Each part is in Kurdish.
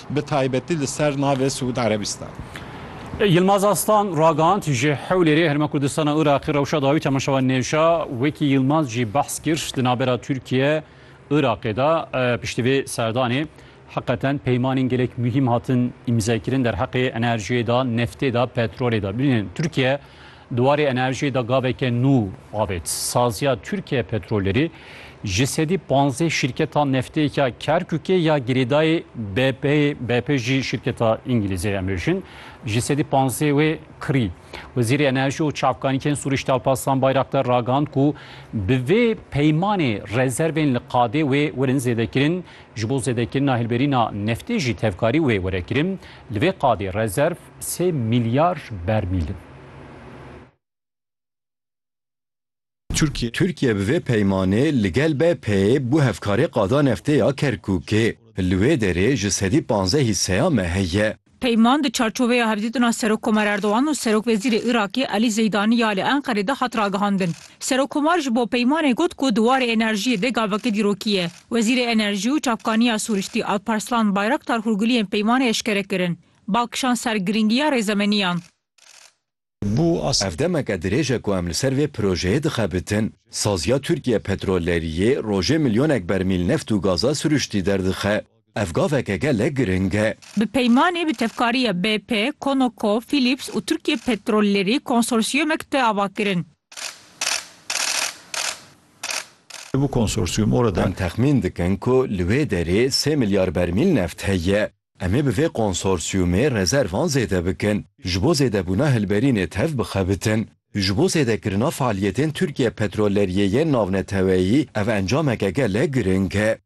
bi taybetî li ser navê Siûd Erebîstan. Yilmaz Aslan ragihand, Ji Hewlêrê, Herêma Kurdistana Iraqê rewşa dawî temaşevan nêşa. Wekî Yilmaz jî behs kir, di navbera Tirkiye, Iraqê de piştî vê serdanê heqeten peymanên gelek muhîm hatin îmzekirin derheqê enerjiyê de, neftê de, petrolê de. Bibînin Tirkiye Di warê enerjiyê de gaveke nû avêt. Saziya Tirkiye Petrolerî ji sedî panzdeh şîrketa neftê ya Kerkûkê ya girêdayî BP'yê, BP jî şîrketa îngilîzê em bêjin, ji sedî panzdeh wê kirî. Wezîrê Enerjî û Çavkanîkên Sûrîşt Alparslan Bayraktar ragihand ku bi vê peymanê rezervên li qadê wê werin zêdekirin. Ji bo zêdekirina hilberîna neftê jî tevkarî wê were kirin. Li vê qadê rezerv Sê milyar bermîl in. Tirkiye. Tirkiye bi vê peymanê li gel BP'ê bû hevkarê qada neftê ya Kerkûkê. Li wê derê ji sedî panzdeh hîseya me heye. Peyman di çarçoveya hevdîtina Serokkomer Erdogan û Serokwezîrê Îraqê Elî Zeydani ya li Enqerê de hat ragihandin. Serokkomar ji bo peymanê got ku di warê enerjiyê de gaveke dîrokî ye. Wezîrê Enerjî û Çavkaniya Sûristî Alparslan Bayraktar hûrguliyên peymanê eşkere kirin. Bal kişand ser girîngiya rêzemeniyan. Ev demeke dirêj e ku em li ser vê projeyê dixebitin. Saziya Tirkiye Petrolleriyê rojê milyonek bermîl neft û gaza siruştî derdixe. Ev gaveke gelek giring e. Bi peymanê bi tevkariya BP, Conoco, Philips û Tirkiye Petrollerî konsorsiyumek tê avakirin. Em texmîn dikin ku li wê derê sê milyar bermîl neft heye. Em ê bi vê konsorsiyumê rezervan zêde bikin, ji bo zêdebûna hilberînê tev bixebitin. Ji bo zêdekirina faaliyetên Tirkiye Petrolleriyê yên Navneteweyî ev encameke gelek giring e.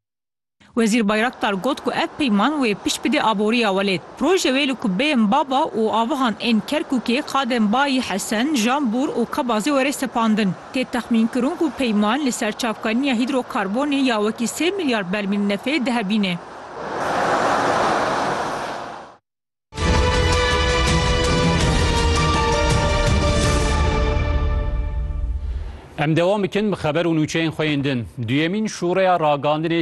Wezîr Bayraktar got ku ev peyman wê pişt bide aboriya welêt. Proje wê li kubbeyên Baba û avihan ên Kerkûkê, Qadem Bayi Hesen, Jambûr û Kebazê were sepandin. Tê texmînkirin ku peyman li ser çavkaniya hîdrokarbonê ya wekî sê milyar bermîl nefê dihebîne. Em dewam bikin bi xeber û nûçeyên xwe yên din. Duyemîn şûreya ragandinê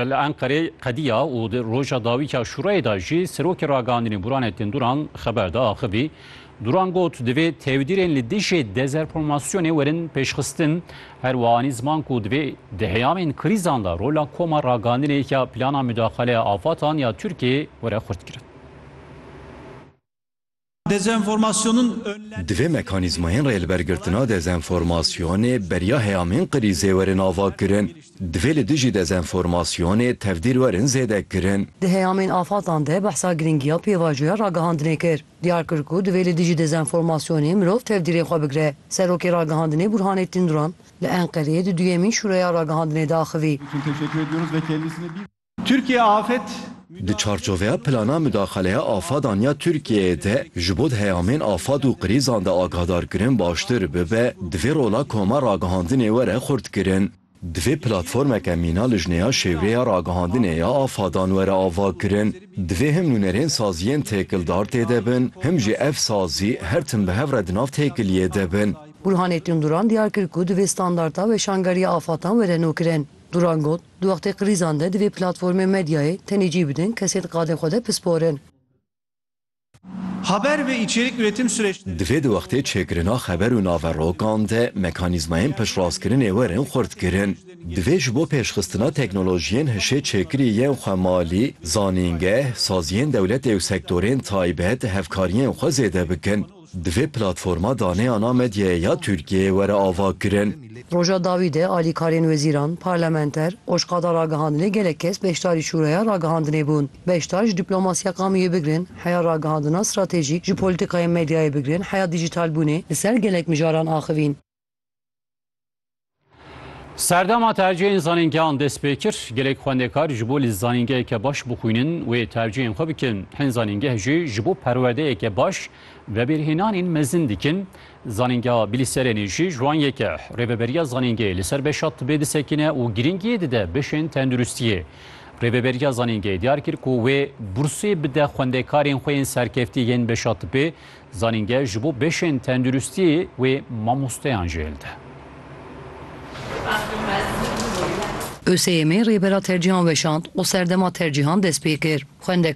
li Enqerê qediya û di roja dawîka şûreyê de jî Serokê Ragandinê Burhanettin Duran xeber da axivî Duran got, divê tevdîrên li dijî dezerformasyonê werin pêşxistin, her wiha anî ziman ku divê di heyamên krîzan de rola koma ragandinê ya plana mudaxaleya afatan ya Tirkiyeyê were xurtkirin. Divê mekanîzmayên rêlibergirtina dezenformasyonê beriya heyamên krîzê werin avakirin. Divê li dijî dezenformasyonê tevdîr werin zêdekirin. Di heyamên afatan de behsa girîngiya pêvajoya ragihandinê kir. Diyar kir ku divê li dijî dezenformasyonê mirov tevdîrê xwe bigire. Serokê Ragihandinê Burhanettin Duran li Enqereyê di duyemîn Şûreya Ragihandinê de axivî. Türkiye Afet Di çarçoveya Plana Mudaxaleya Afadan ya Tirkiyeyê de ji bo di heyamên afad û krîzan de agahdarkirin baştir bibe, divê rola koma ragihandinê were xurtkirin. Divê platformeke mîna lijneya şêwreya ragihandinê ya afadan were avakirin. Divê him nûnerên saziyên têkildar tê de bin, him jî ev sazî her tim bi hev re di nav têkiliyê de bin. Burhanettin Duran diyar kir ku divê standarta weşangeriya afatan were nûkirin. Duran got, Di wextê krîzan de divê platformên medyayê tenê cî bidin kesên di qadê xwe de pisporin. Haber ve içerik üretim süreçleri. Divê di wextê çêkirina xeber û naverokan de mekanîzmayên piştraskirinê werin xurtkirin. Divê ji bo pêşxistina teknolojiyên hişê çêkirî yên xwe malî, zanîngeh, saziyên dewletê û sektorên taybet hevkariyên xwe zêde bikin. Divê platforma daneyana medyayê ya Tirkiyeyê were avakirin. Roja dawî de alîkarên wezîran, parlamenter, oşqada ragihandinê gelek kes beşdarî şûreya ragihandinê bûn. Beşdar ji dîplomasîya qamûyê bigirin heya ragihandina stratejîk, ji polîtîkayên medyayê bigirin heya dîjîtalbûnê li ser gelek mijaran axivîn. Serdema tercîya însanên gehan dest pê kir. Gelek xwendekar ji bo li zanîngeheke baş bixwînin wê tercîyên xwe bikin. Hin zanîngeh jî ji bo perwerdeyeke baş vebêrhênanên mezin dikin. Zanîngeha Bilîserênî jî ji wan yek e. Rêveberiya zanîngehê li ser beşa tibê disekine û girîngiyê dide beşên tenduristiyê. Rêveberiya zanîngehê diyar kir ku wê bursê bide xwendekarên xwe yên serkeftî yên beşa tibê, zanîngeh ji bo beşên tenduristiyê wê mamosteyan jî hilde. ÖSYM'ê rêbera tercîhan weşand û serdema tercîhan dest pê kir. Xwendekar